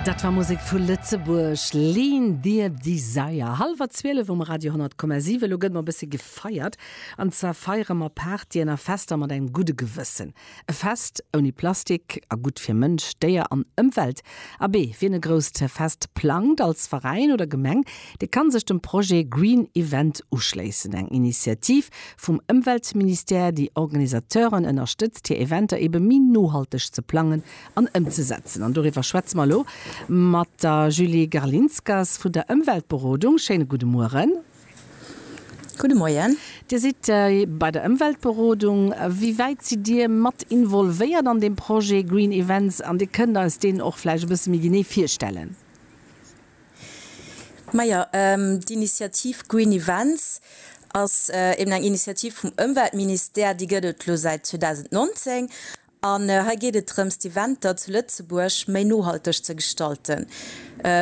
Dat war Musek vu Lëtzebuerg, Lean Dear Desire, hallwer 12 um Radio 10,7. Elo gëtt mer e bësse gefeiert, an zwar feiere mer Partyen a Fester mat engem gudde Gewëssen. E Fest ouni Plastik a gutt fir Mënsch, Déier an Ëmwelt. Abee, wien e grousst Fest plangt als Veräin oder Gemeng, dee kann sech dem Projet Green Event uschléissen, eng Initiativ Vum Ëmweltministère, Déi Organisateuren ënnerstëtzt hir Eventer ebe méi nohalteg ze plangen an ëmzesetzen. An doriwwer schwätze mer elo mat der Julie Garlinskas vun der Ëmweltberodung. Schéine gudde Mueren. Gudde Moien. Dir sidd bei der Ëmweltberodung. Wéi wäit sidd Dir mat involvéiert an deem Projet Green Events an Dir kënnt eis deen och vläicht e bësse méi genee virstellen? Majo, d'Initiativ Green Events ass eben eng Initiativ vum Ëmweltministère, déi gëtt et elo säit 2019. An hei geet et drëms, d'Eventer zu Lëtzebuerg méi nohalteg ze gestalten.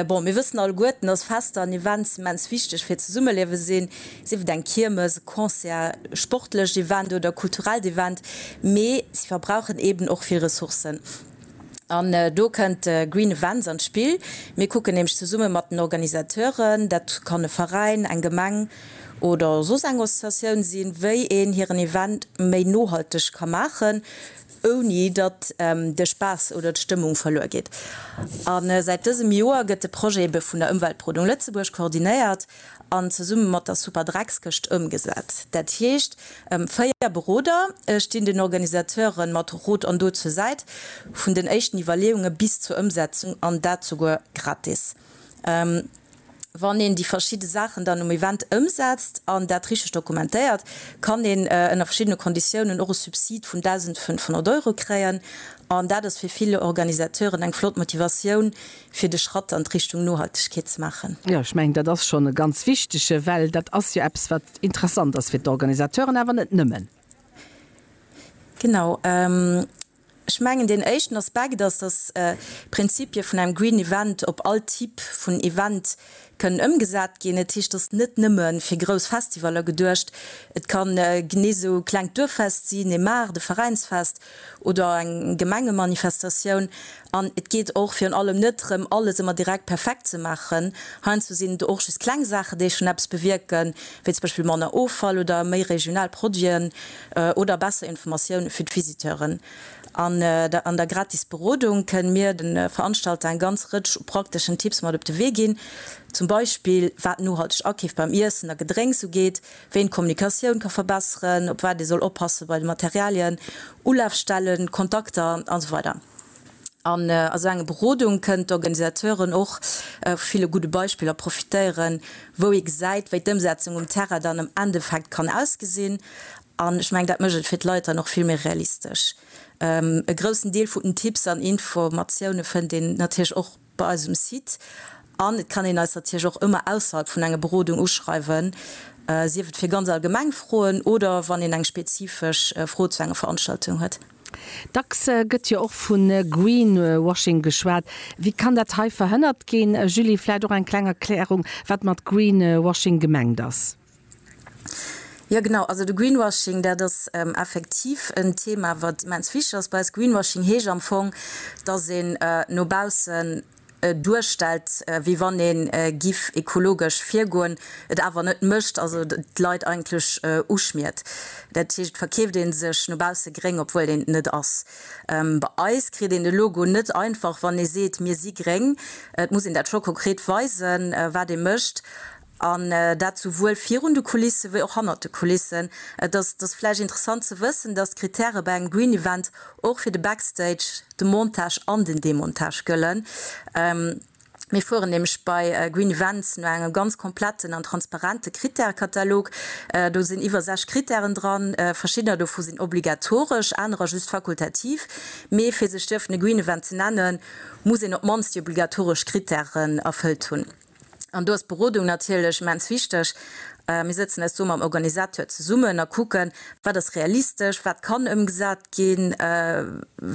Bon, mir wëssen alleguerten, dass Fester an Events immens wichteg fir d'Zesummeliewe sinn, sief et eng Kiermes, e Concert, e sportlecht Event oder e kulturellt Event, mee se verbrauchen eben och vill Ressourcen. An do kënnt de Green Events an d'Spill. Mir kucken nämlech zesumme mat den Organisateuren, dat kann e Veräin, eng Gemeng oder soss eng Associatioun sinn, wéi een hiren Event méi nohalteg ka maachen, ouni datt de Spaass oder d'Stëmmung verluer geet. A säit dësem Joer gëtt de Projet ebe vun der Ëmweltberodung Lëtzebuerg koordinéiert. an zesumme mat der Superdreckskëscht ëmgesat. Dat heescht, véier Beroder stinn den Organisateuren mat Rot an Dot zur Säit, vun den éischten Iwwerleeunge bis zur Ëmsetzung, an dat souguer gratis. Wann een déi verschidde Saachen dann um Event ëmsetzt an dat richteg dokumentéiert, kann een ënner verschiddene Konditiounen och e Subsid vun 1.500 Euro kréien. An dat ass fir vill Organisateuren eng flott Motivatioun, fir de Schratt an d'Richtung Nohaltegkeet ze maachen. Jo, ech mengen, dat ass schonn e ganz wichtige, well dat ass jo eppes, wat interessant ass fir d'Organisateuren, awer net nëmmen. Genau. Ech mengen, deen éischten Aspekt ass, dass d'Prinzipie vun engem Green Event op all Typ vun Event kënnen ëmgesat ginn. Dat heescht, ass net nëmme fir grouss Festivaller geduecht. Et ka genee esou klengt Duerffest sinn, ee Maart, e Veräinsfest. oder eng Gemengemanifestatioun, an et geet och virun allem net drëm, alles ëmmer direkt perfekt ze maachen. Heiansdo sinn et och just kleng Saachen, déi schonn eppes bewierken, wéi zum Beispill manner Offall oder méi regional Produiten oder besser Informatioun fir d'Visiteuren. An der gratis Berodung kënnen mir de Veranstalter eng ganz Rëtsch u prakteschen Tipps mat op de Wee ginn, zum Beispill wat nohalteg Akeef beim Iessen a Gedrénks ugeet, wéi een d'Kommunikatioun ka verbesseren, op wat ee soll oppasse bei de Materialien, Ulafstellen, Kontakter an esou weider An esou enge Berodung kënnen d'Organisateuren och vu ville gudde Beispiller profitéieren, wou ee gesäit, wéi d'Ëmsetzung um Terrain dann am Endeffekt kann ausgesinn. An ech mengen, dat mécht et fir d'Leit dann och vill méi realistesch. E groussen Deel vun den Tipps an Informatioune fënnt een natierlech och bei eisem Site an et kann een eis natierlech och ëmmer ausserhalb vun enger Berodung uschreiwen, sief et fir ganz allgemeng Froen oder wann een eng spezifesch Fro zu enger Veranstaltung huet. Dacks gëtt jo och vu Greenwashing geschwat. Wéi kann dat hei verhënnert ginn? Julie, vläicht och eng kleng Erklärung, wat mat Greenwashing gemengt ass? Jo genau, also de Greenwashing, dat ass effektiv en Thema, wat immens wichteg ass bei eis. Greenwashing heescht am Fong, dass een no baussen duerstellt, wéi wann ee giff ekologesch virgoen, et awer net mécht, also d'Leit eigentlech uschmiert. Dat heescht, et verkeeft ee sech no bausse gréng, obwuel een et net ass. Bei eis kritt een de Logo net einfach, wann ee seet, mir si gréng. Et muss een dat scho konkret weisen, wat ee mécht. An dat souwuel virun de Kulisse wéi och hannert de Kulissen. Et ass vläicht interessant ze wëssen, dass d'Krittäre bei engem Green Event och fir de Backstage, de Montage an den Demontage gëllen. Mir fueren nämlech bei Green Events no engem ganz kompletten an transparente Krittärekatalog. Do sinn iwwer 60 Krittären dran. Verschiddener dovu sinn obligatoresch, anerer just fakultativ. Mee fir sech dierfen e Green Event ze nennen, muss een op d'mannst déi obligatoresch Krittären erfëllt hunn. An do ass d'Berodung natierlech immens wichteg. Mir sëtzen eis do mam Organisateur zesummen a kucken, wat ass realistesch, wat kann ëmgesat ginn,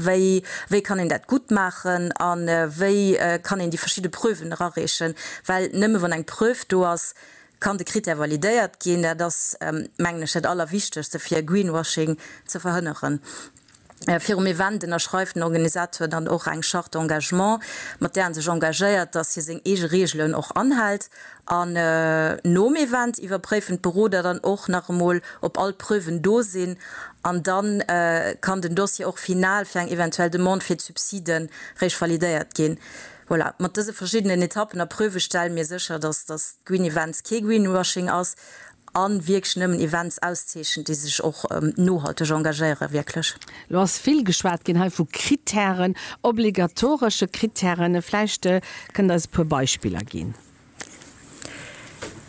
wéi, wéi kann een dat gutt maachen a wéi kann een déi verschidde Preuven erareechen. Well nëmme wann eng Preuve do ass, kann de Critère validéiert ginn. Dat ass, mengen ech, dat Allerwichtegste, fir Greenwashing ze verhënneren. Virum Event ënnerschreift den Organisateur dann och eng Charte d'engagement, mat där en sech engagéiert, dass hie seng eege Reegelen och anhält. An nom Event iwwerpréifen d'Beroder dann och nach emol, ob all d'Preuven do sinn. An da kann den Dossier och final fir eng eventuell Demande fir d'Subside réischt validéiert ginn. Voilà, mat dëse verschiddenen Etappen a Preuve stelle mir sécher, dass d'Green Events kee Greenwashing ass A wierklech nëmmen Events auszeechent, déi sech och nohalteg engagéieren. Wierklech. Lo ass vill geschwat ginn hei vu Krittären, obligatoresche Krittären. Vläicht kënnt eis e puer Beispiller ginn.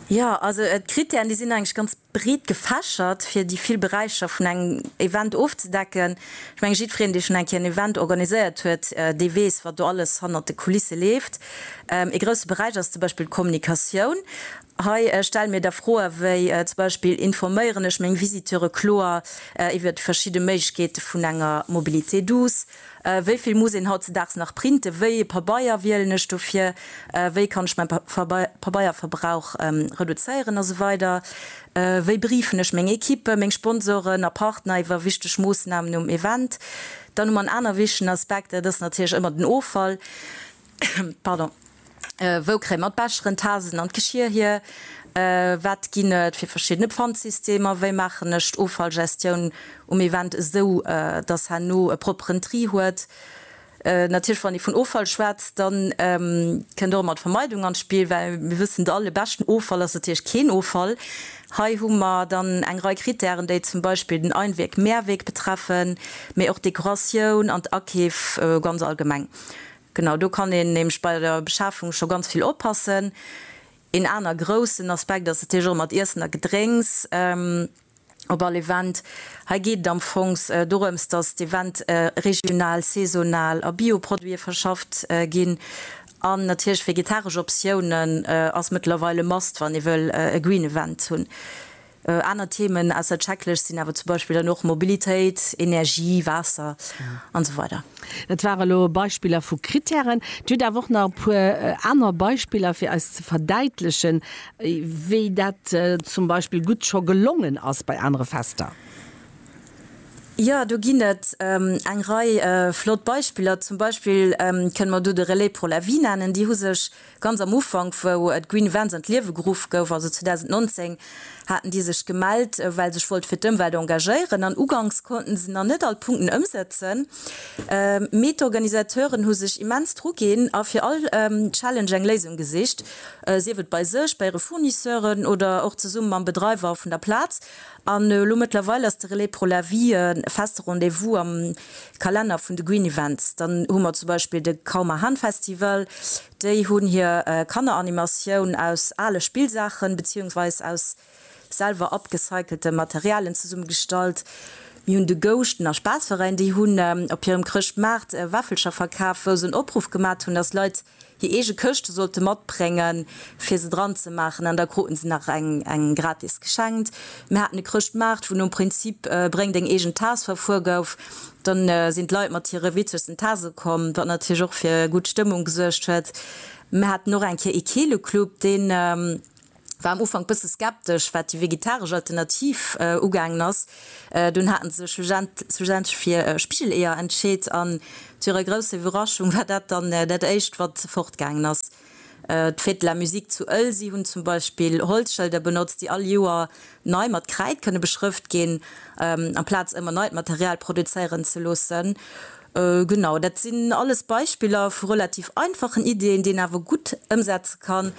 Jo, also d'Krittären, déi sinn eigentlech ganz breet gefächert, fir déi vill Beräicher vun engem Event ofzedecken. Ech menge jiddwereen, dee schonn eng Kéier en Event organiséiert huet, dee weess, wat do alles hannert de Kulisse leeft. Ee grousse Beräich ass zum Beispill d'Kommunikatioun. Hei stelle mir da Froe wéi zum Beispill, Informéieren ech meng Visiteure kloer iwwer déi verschidde Méiglechkeete vun enger Mobilité douce? Wéi vill muss een hautzedaags nach printen? Wéi ee Pabeier wielen ech dofir? Wéi kann ech mäi Pabeierverbrauch reduzéieren? A sou weider Wéi briefen ech meng Equippen, meng Sponsoren a Partner iwwer wichteg Moossnamen um Event? Dann hu mer en aner wichtegen Aspekt, dat ass natierlech ëmmer den Offall. Pardon. Wou kréie mer d'Becheren, d'Tassen an d'Geschir hier? Wat ginn et fir verschidden Pfandsystemer? Wéi maachen ech d'Offallgestioun um Event esou, dass herno e propperen Tri huet? Natierlech, wann ee vun Offall schwätzt, da kënnt och ëmmer d'Vermeidung an d'Spill, well mir wëssen et all, e beschten Offall ass natierlech keen Offall. Hei hu mer dann eng Rei Kritären, déi zum Beispill den Einweg-Mehrweg betreffen, mee och d'Dekoratioun an d'Akeef ganz allgemeng. Genau, do kann een nämlech bei der Beschafung scho ganz vill oppassen. Een aner groussen Aspekt ass natierlech och mat Iessen a Gedrénks op all Event. Hei geet et am Fong dorëms, dass d'Event regional, saisonal a Bio-Produite verschafft ginn. An natierlech vegetaresch Optiounen ass mëttlerweil e Must, wann ee wëll e Green Event hunn. Aner Themen ausser Checklëscht sinn awer zum Beispill dann och Mobilitéit, Energie, Waasser an esou weider. Dat ware elo Beispiller vu Krittären. Dir hutt awer och nach e puer aner Beispiller fir eis ze verdäitlechen, wéi dat zum Beispill gutt scho gelongen ass bei anere Fester. Jo, do ginn et eng Rei flott Beispiller. Zum Beispill kënne mer do de Relais pour la Vie nennen. Déi hu sech Ganz am Ufank, wou d'Green Events an d'Liewe geruff gouf, also 2019, haten déi sech gemellt, well sech wollte fir d'Ëmwelt engagéieren. An uganks konnten se nach net all d'Punkten ëmsetzen, mee d'Organisateuren hu sech immens dru ginn a fir all Challenge eng Léisung gesicht, sief et bei sech, bei hire Fournisseuren oder och zesumme mam Bedreiwer vun der Plaz. An elo mëttlerweil ass de Relais pour la Vie e feste Rendez-vous am Kalenner vun de Green Events. Dann hu mer zum Beispill de Kaumer Hahn Festival. Déi hunn hir Kanneranimatioun aus ale Spillsaachen beziehungsweise aus selwer upgecyclete Materialien zesummegestallt. Mir hunn de Gousch, den Aspasveräin, déi hunn op hirem Chrëschtmaart Wäffelcher verkaaft, wou se en Opruff gemat hunn, dass Leit Hir eege Këschte sollt e matbréngen, fir se dran ze maachen, an da kruten se nach eng gratis geschenkt. Mir haten e Chrëschtmaart, wou nom Prinzip bréng deng eegen Taass verfuer gouf. Dann sinn d'Leit mat hire witzegsten Taase komm, wat natierlech och fir gutt Stëmmung gesuergt huet. Mir haten och eng Kéier ee Keeleclub, deen war am Ufank bësse skeptesch wat déi vegetaresch Alternativ ugaangen ass. Dunn haten se sech schlussendlech fir Spigeleeër entscheet an zu hirer grousser Iwwerraschung war dat dann dat éischt wat fort gaangen ass. D'Fêtes de la Musique zu Ëlsi hunn zum Beispill Holzschëlder benotzt déi all Joer nei mat Kräid kënne beschrëft ginn amplaz ëmmer neit Material produzéieren ze loossen. Genau dat sinn alles Beispiller vu relativ einfachen Iddien déi een awer gutt ëmsetze kann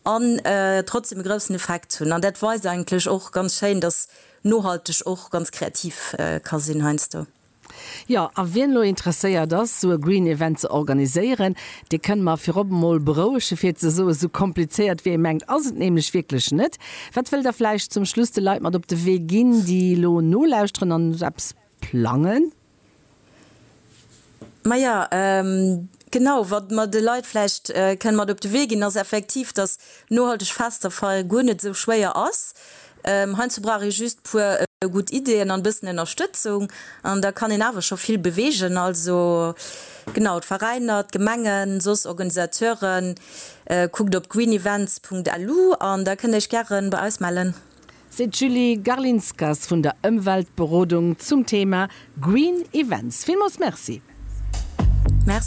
an trotzdem e groussen Effekt hunn. An dat weist eigentlech och ganz schéin, dass nohalteg och ganz kreativ ka sinn heiansdo. Jo, a wien elo interesséiert ass, esou e Green Event ze organiséieren, dee kënnt mer virop emol berouege fir ze soen, esou komplizéiert wéi ee mengt ass et nämlech wierklech net. Wat wëllt Der vläicht zum Schluss de Leit mat op de Wee ginn, déi elo nolauschteren an eppes, plangen? Maja, genau, wat mer de Leit vläicht kënnen mat op de Wee ginn, ass effektiv, dass nohalteg Festerfeiere guer net esou schwéier ass. Heiansdo brauch ee just e puer gutt Ideeën an e bëssen Ënnerstëtzung an da kann een awer scho vill beweegen. Also, genau, d'Veräiner, d'Gemengen, soss Organisateuren, kuckt op greenevents.lu an da kënnt Iech gäre bei eis mellen. seet d'Julie Garlinskas vun der Ëmweltberodung zum Thema Green Events. Villmools Merci.